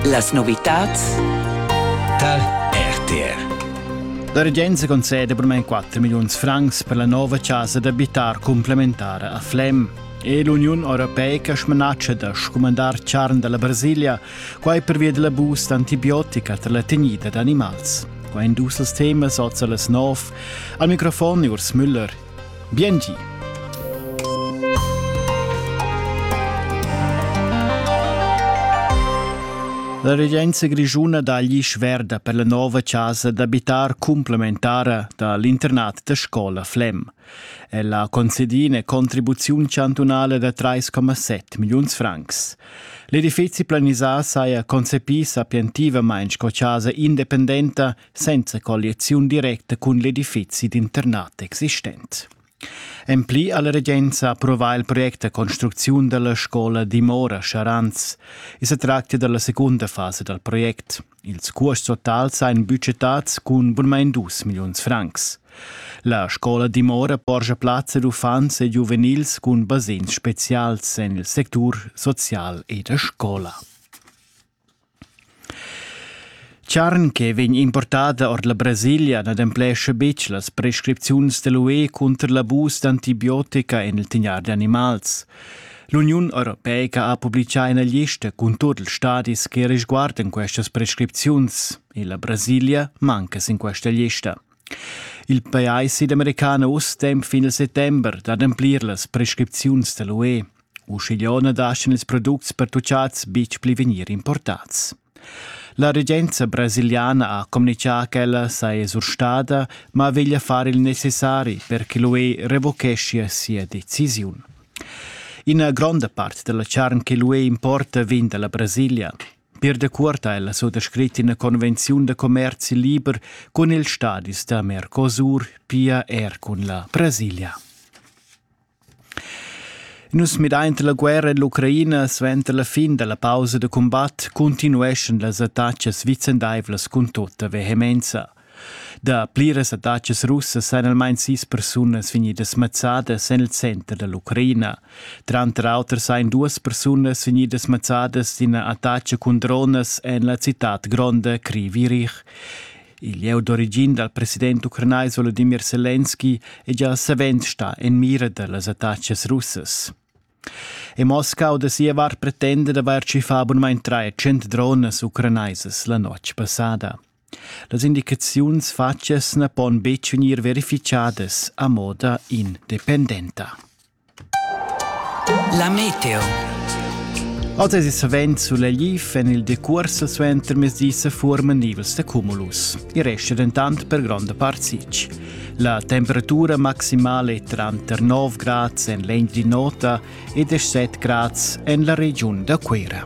Las novitads tar RTR. La regenza concede per me 4 milioni francs per la nuova casa d'abitar complementare a Flem. E l'Unione Europea ha smanatge da scumandar charn dalla Brasilia, quai pervia della boost antibiotica tra la tegnida d'animals. Quai dus els temas oz las 9. Al microfon Urs Müller, Biengi. La regenza grischuna dagli sverda per la nova casa d'abitar complementara da l'internat da scola Flem. Ella concedi una contribuzione chantunale da 3,7 milions francs. L'edifici planisà saja concepì sapientivamente sco casa independenta senza colliaziun directa cun l'edifizi d'internat existent. En pli alla regenza approvà il project da construcziun della scola Dimora Charanz e se tracta della seconda fase dal project. Ils cuosts totals ein budgetats cun bunmain 2 milliuns francs. La scola Dimora porgia plazza ad uffants e giuvenils cun basegns specials en il sectur social e da scola. Charn che vegn importada ord la Brasilia n'ademplescha betg las prescripziuns da l'UE cunter l'abus d'antibiotica en il tignar d'animals. L'Uniun europeica ha publitgà ina lista cun tut ils stadis che resguardan questas prescripziuns e la Brasilia manca sin questa lista. Il pajais südamericano uss tem fin il settember d'ademplir las prescripziuns da l'UE. Uschigliö na dasdan ils products pertuchats betg pli vegnir importats. La regenza brasiliana ha communichà ch'ella saja surstada, ma veglia far il necessari per che l'UE revocheschia sia decisiun. Ina gronda part della charn che l'UE importa vegn dalla Brasilia. Per decuort ha ella sottoscrit ina convenziun da commerci liber cun ils stadis da Mercosur, pia er cun la Brasilia. Nus midainta la guerra en l'Ucraina suenter la fin da la pausa da cumbat cuntinueschan las attachas vicendaivlas cun tutta vehemenza. Da pliras attachas russas èn almain sis persunas vegnidas mazzadas en il center da l'Ucraina. Tranter auter sain duas persunas vegnidas mazzadas d'ina attacha cun dronas en la citad gronda Krivirich. Il lieu d'origin dal president ucranais Volodimir Selenski è gia savens stà en mira da las attacas russas. E Moscau da sia vart pretenda d'avair tschiffà bunmain tschient dronas ucranaisas la notg passada. Las indicaziuns fatgas na pon betg vegnir verificadas a moda independenta. La meteo. Oz es savend sulegliv en il decuors suenter mezdi se forman nivels de cumulus. I resta dentant per gronda part sic. La temperatura maximale è tranter 9 grads en l'end di nota e 17 grads en la regiun da Cuera.